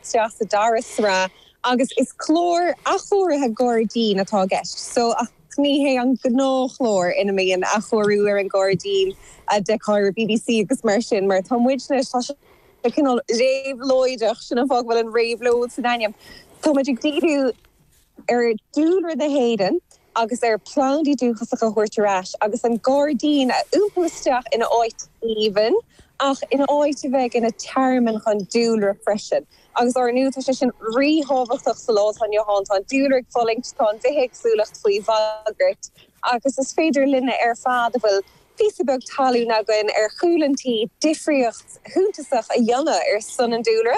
isteach sa dara sraith agus is clár athchóirithe gairdín atá i gceist seo ach ní hé an gnáthchlár ina mbíonn athchóiriú ar an ngairdín a d'fheicfeá ar bbc agus mar sin mar tá muidne tá sé cineál réabhlóideach sin an fáth go bhfuil an réabhlóid san ainm tá muid ag díriú ar dúlra na hÉireann agus ar phlandaí dúchasacha a thabhairt ar ais agus an gairdín a iompú isteach ina áit aoibhinn ach ina áit a bheidh ina tearmann don dúlra freisin. Agus ár ndú tá sé sin ríthábhachtach sa lá atá inniu ann. Tá an dúlra ag fulaingt, tá an bhithéagsúlacht faoi bhagairt agus is féidir linne ar fad a bhfuil píosa beag talún againn ar chúl an tí difríocht shuntasach a dhéanamh ar son an dúlra.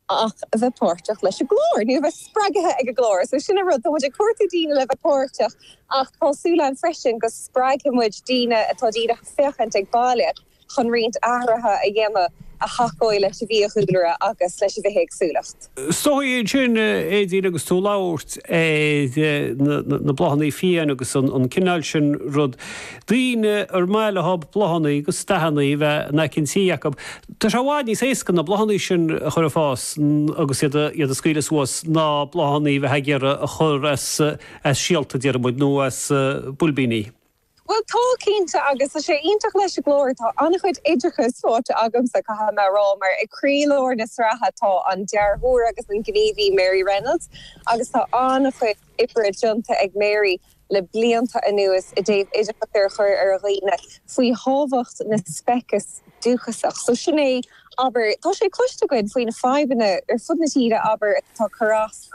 ach a bheith páirteach leis an gclár, nó a bheith spreagaithe ag an gclár. So sin an rud, tá muid ag cuartú daoine le bheith páirteach ach tá súil againn freisin go spreagfaidh muid daoine atá díreach ag féachaint ag baile chun roinnt athruithe a dhéanamh a thacóidh leis an bhfiadhúlra agus leis an bhithéagsúlacht. Stopfaidh mé ansin thú Aedín agus tú ag labhairt ar na bláthannaí fiáin agus an cineál sin rud, daoine ar mhaith leob bláthannaí agus dathannaí a bheith in aice an tí acub. Tá sé i bhfad níos éasca na bláthannaí sin a chur ar fás agus iad a scaoileadh suas ná bláthannaí a bheith ag iarraidh a chur as síolta, déaraimid, nó as builbíní. Bhuel, tá, cinnte, agus tá sé sin iontach leis an gclár. Tá an-chuid oideachais faighte agamsa, caithfidh mé a rá, mar ag croílár na sraithe tá an dearthóir agus an gníomhaí Mary Reynolds agus tá an-chuid oibre déanta ag Mary. le blianta anuas i dtaobh oideachas a chur ar dhaoine faoi thábhacht na speiceas dúchasach. So sin é, abair, tá sé cloiste againn faoi na fadhbanna ar fud na tíre, abair, atá ag cur as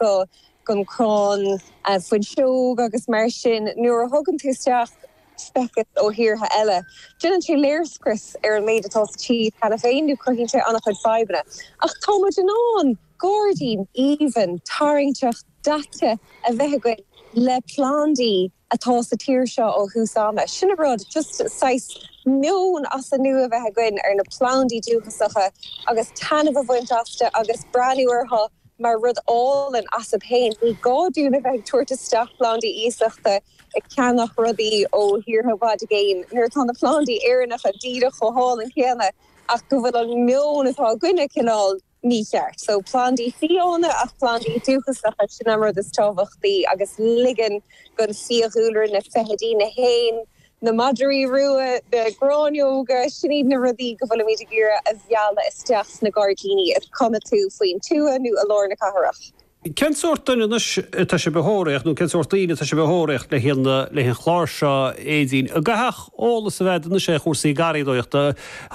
gon crann fuinseog agus mar sin. Nuair a thugann tú isteach speiceas ó thíortha eile, déanann sé léirscrios ar an méid atá sa tír cheana féin nó cruthaíonn sé an-chuid fadhbanna. Ach tá muid in ann. Gairdín aoibhinn, tarraingteach, daite a bheith againn le plandaí atá sa tír seo ó thús ama. Sin an rud, just saghas meon as an nua a bheith againn ar na plandaí dúchasacha agus taitneamh a bhaint astu agus breathnú orthu mar rud álainn astub fhéin. Ní gá dúinn a bheith ag tabhairt isteach plandaí iasachta, ag ceannach rudaí ó thíortha i bhfad i gcéin, nuair atá na plandaí Éireannacha díreach chomh hálainn céanna ach go bhfuil an meon atá againne cineál mícheart. So plandaí fiáine ach plandaí dúchasacha, sin an rud is tábhachtaí agus ligean gon fiadhúlra, na feithidí, na héin, na madraí rua, na gráinneoga, sin iad na rudaí go bhfuilimid ag iarraidh a mhealladh isteach sna gairdíní is cuma an bhfuil tú faoin tuath nó i lár na cathrach. Cén sórt duine anois atá sibh a thóraíocht nó cén sórt daoine atá sibh a thóraíocht le haghaidh an le haghaidh an chláir seo Éadaoin? An gcaithfeadh eolas a bheith anois ar chúrsaí garraíodóireachta?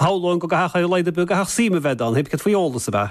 Shamhlóinn go gcaithfeadh ar a laghad go gcaithfeadh suim a bheith ann, théip céard faoi eolas, ab ea?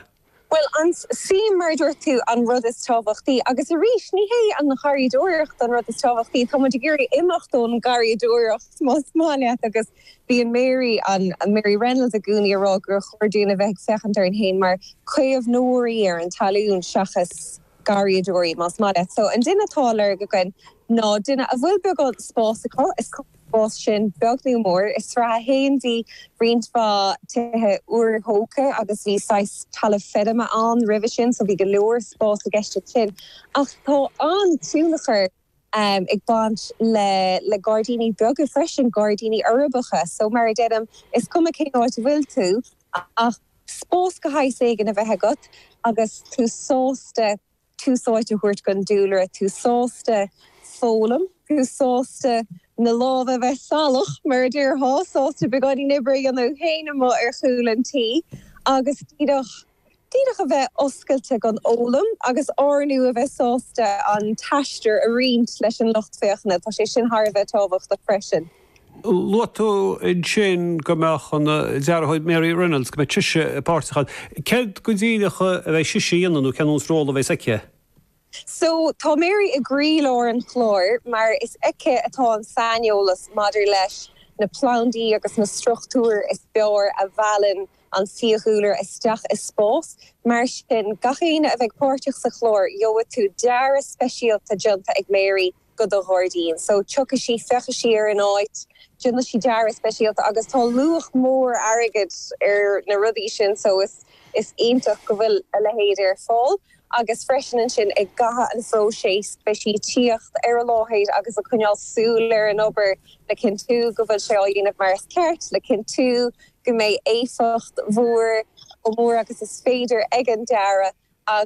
Bhuel, an tsuim, mar a dúirt tú, an rud is tábhachtaí agus arís ní hé an gharraíodóireacht an rud is tábhachtaí, tá muid ag iarraidh imeacht ón ngarraíodóireacht más maith leat agus Bíonn Mary, an Mary Reynolds, i gcónaí ag rá gur chóir dúinn a bheith ag féachaint orainn féin mar chaomhnóirí ar an talamh seachas garraíodóirí, más maith leat. So, an duine atá á lorg againn ná duine a bhfuil beagán spáis acu, is cuma an bhfuil an spás sin beag nó mór. I sraith a haon bhí roinnt mhaith tithe úrthógtha agus bhí saghas talamh feirme ann roimhe sin, so bhí go leor spás i gceist ansin. Ach tá an-tionchar. ag baint le gairdíní beaga freisin, gairdíní uirbeacha, so mar a deinim, is cuma cén áit a bhfuil tú ach spás de shaghas éigin a bheith agat agus tú sásta tús áite a thabhairt don dúlra, tú sásta foghlaim, tú sásta na lámha a bheith salach mar a déarfá, sásta beagáinín oibre a dhéanamh féin amuigh ar chúl an tí agus díreach. D'fhéadfadh a bheith oscailte don fhoghlaim agus ar ndóigh a bheith sásta an t-aistear a roinnt leis an lucht féachana, tá sé sin thar a bheith tábhachtach freisin. Luaigh tú ansin go mbeadh an dearthóir Mary Reynolds, go mbeidh sise páirteach ann. Céard go díreach a bheidh sise a dhéanamh nó cén sórt ról a bheas aici? So, tá Mary i gcroílár an chláir mar is aici atá an saineolas maidir leis na plandaí agus na struchtúir is fearr a mheallann an fiadhúlra isteach i spás. Mar sin, gach éinne a bheidh páirteach sa chlár, gheobhaidh tú dearadh speisialta déanta ag Mary. do do ghairdín so tiocfaidh sí, féachfaidh sí ar an áit, déanfaidh sí dearadh speisialta agus tá luach mór airgid ar na rudaí sin so is iontach go bhfuil a leithéid ar fáil agus freisin ansin i gcaitheamh an phróisis beidh sí ag tíocht ar an láthair agus ag coinneáil súil ar an obair le cinntiú go bhfuil sé á dhéanamh mar is ceart, le cinntiú go mbeidh éifeacht mhór chomh mór agus is féidir ag an dearadh agus.